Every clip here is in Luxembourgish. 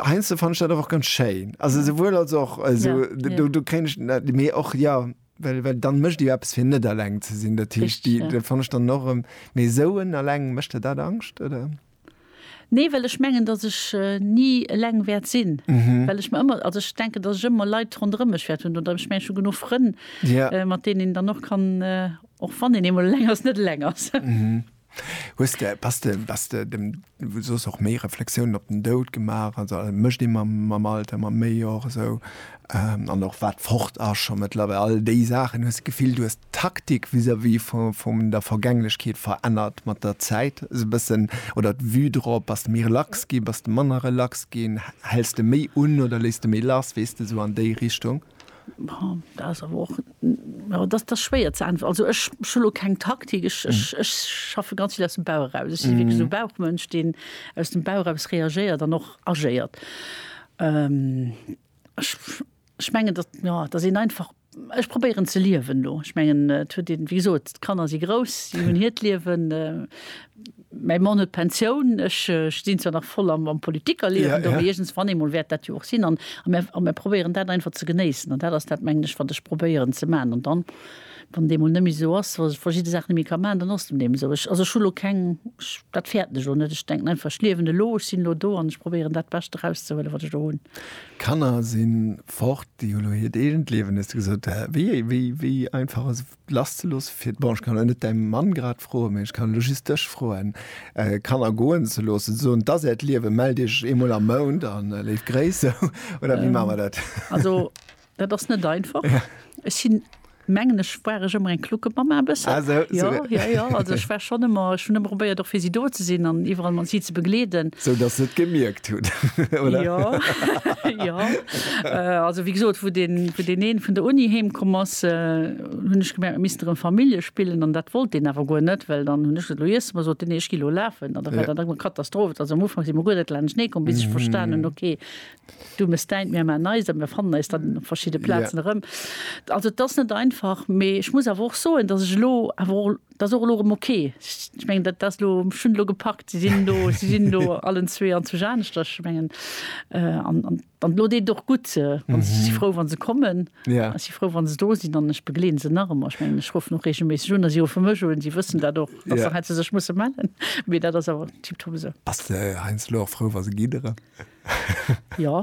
Heinsdo fand ich dat och ganz schéin. Also souwuel als och also, ja, ja. Du, du kennst mé och ja well, well dann mëcht Dir eppes fir net alleng ze sinn. Dat heescht Di ja. fand ich dann norm méi souen alleng mëcht der dat Angscht oder? Nee, well ech mengen, datt ech äh, nie eleng wäert sinn. Mhm. Well ech mir ëmmer also ech denke, datt ech ëmmer Leit ronderëm mech wäert hunn oder ech meng schon genuch Frënn, ja. äh, mat denen een dann och kann äh, och wann een eemol eleng ass, net eleng ass. Mhm. Hues de, bass de, bass de dem, wou soss och méi Reflexiounen op den Doud gemaach, also a mécht ee mam, mam Alter, mam méi och esou, an och wat fort ass scho méttlerweil, all déi Saachen? Hues de d'Gefill, du hues d'Taktik vis-à-vis vu, vum der Vergänglechkeet verännert mat der Zäit esou bëssen, oder d'Vue drop? Bass de méi relax ginn, bass de manner relax ginn, häls de méi un oder léiss de méi lass, weess de, esou an déi Richtung? Dat ass schwéier ze äntweren. Also ech hu lo keng Taktik. Ech schaffe ganz vill aus dem Bauch eraus. Ech si wierklech esou e Bauchmënsch, deen aus dem Bauch eraus reagéiert an och agéiert. Ech mengen, datt, jo, datt een einfach, ech probéieren ze liewen elo. Ech mengen, et huet ee, wéi gesot, d'Kanner si grouss, si hunn hiert Liewen. Mäi Mann huet Pensioun, ech stinn zwar nach voll am Politikerliewen do, mee iergens wann eemol wäert dat jo och sinn. An a mir probéieren dat einfach ze genéissen. An dat ass dat, mengen ech, wat ech probéieren ze maachen. An dann, wann et eemol net méi esou ass, dass ech verschidde Saachen net méi ka maachen, dann ass dat eeben esou. Ech, also ech hu lo keng, ech, dat fäerten ech elo net. Ech denken einfach, ech liewen elo, ech sinn elo do an ech probéieren dat Bescht erauszehuelen, wat ech do hunn. D'Kanner si fort, déi hu lo hiert eegent Liewen, hues de gesot. Wéi, wéi, wéi einfach ass lasszeloossen, fir bon, ech kann elo net däi Mann grad froen, mä ech kann elo just dech froen, Kanner goen ze loossen, ze soen, 't ass äert Liewen, mellt iech eemol am Mount a léif Gréiss, sou? Oder wéi maache mer dat? Also, dat ass net einfach. Ech sinn, mengen ech, war ech ëmmer eng Kluckemamma e bëssen. Ah, sou, sou. Jo, jo, jo. Also, ech war schonn ëmmer, ech hunn ëmmer probéiert, och fir si do ze sinn an iwwerall mat si ze begleeden. Sou dass se et gemierkt. Jo, jo. Also wéi gesot, wou deen, wou deen een vun der Uni heemkomm ass, hunn ech gemerkt, mir missten erëm Famille spillen an dat wollt deen awer guer net, well dann hunn ech gesot, elo iessen mer, sot deen, nee, ech gi elo lafen an da war dat eng Katastroph. Also am Ufank si mer guer net laanschtenee komm, bis ech verstan hunn, okay, du mes däint, mir man eist a mir fannen eis dann op verschidde Plazen erëm. Also et ass net einfach, mee ech muss awer och soen, dass ech elo awer och, Dat ass och elo erëm ok. Ech mengen, dat ass elo, ech hunn et elo gepackt, si sinn elo, si sinn elo allen zwee an zu Janeschterch. Ech mengen, an, an, an elo deet et och gutt, wann se, ech si frou, wa se kommen. Ech si frou, wa se do sinn an ech begleeden se nach ëmmer. Ech mengen, ech ruffen och reegelméisseg un a si ruffe mech un. Si wëssen dat och, dass se hei zu sech musse mellen. Mee dat ass awer tiptop esou. Bass de heiansdo och frou, wa se gidderen? Jo,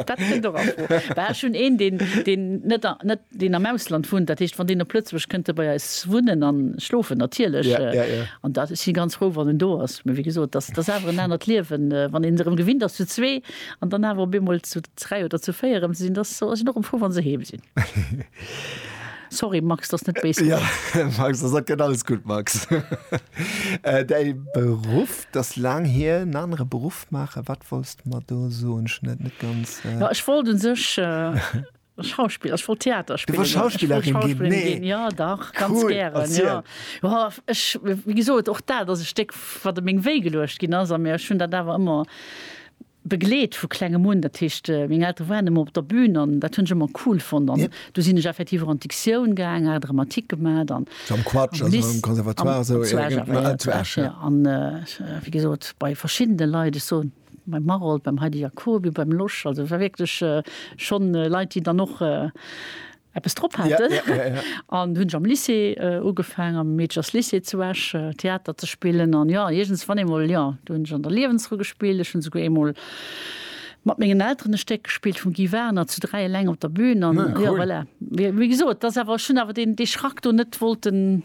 dat kënnt och a Fro. Well ech hunn een, deen, deen net, net, deen am Ausland wunnt, dat heescht, wann deen op Lëtzebuerg kënnt e bei eis wunnen an schlofen, natierlech. Ja, ja, ja. An dat, ech si ganz frou, wann en do ass. Mä wéi gesot, dat, dat ass awer en anert Liewen, wann een erëm gewinnt ass, zu zwee an dann awer op eemol zu dräi oder zu véier erëm ze sinn. Dat ass, ech sinn och erëm frou, wa se heem sinn. Sorry, Max, dass net béis ginn. Jo, Max, dat gëtt alles gutt, Max. Däi Beruff? 't ass laang hier, en anere Beruff maachen. Wat wollts de mer do soen? Ech hunn dat net ganz. Jo, ech wollt u sech Schauspiller, ech wollt Theater spillen. Du wollt Schauspillerin ginn? Ech wollt Schauspillerin ginn, jo, dach, ganz gären. Cool, erziel. Jo, ech, wéi gesot, och dat ass e Stéck, wat op meng Wéi geluecht ginn ass. A mee ech hunn dat awer ëmmer. begleet vu Klengem un, dat heescht meng Eltere waren ëmmer op der Bün an dat hunn ech ëmmer cool fonnt an du sinn ech effektiv och an d'Dictioun gaang, hat Dramatik gemat an am Conservatoire zu Esch jo an wéi gesot bei verschiddene Leit, ech soen beim Marold, beim Heidi Jacoby, beim Losch, also war wierklech schonn Leit déi dann och eppes drop haten. Ja, ja, ja, ja. An hunn ech am Lycée ugefaangen, am Meedchers Lycée zu Esch Theater ze spillen. An jo, iergens wann eemol, jo, do hunn ech an der Liewensrou gespillt. Ech hunn souguer eemol mat mengen Elteren e Stéck gespillt vum Guy Warner, zu dräi eleng op der Bühn. An jo, voilà, wéi gesot, et ass awer, ech hunn awer deen, dee Schrack do net wollten.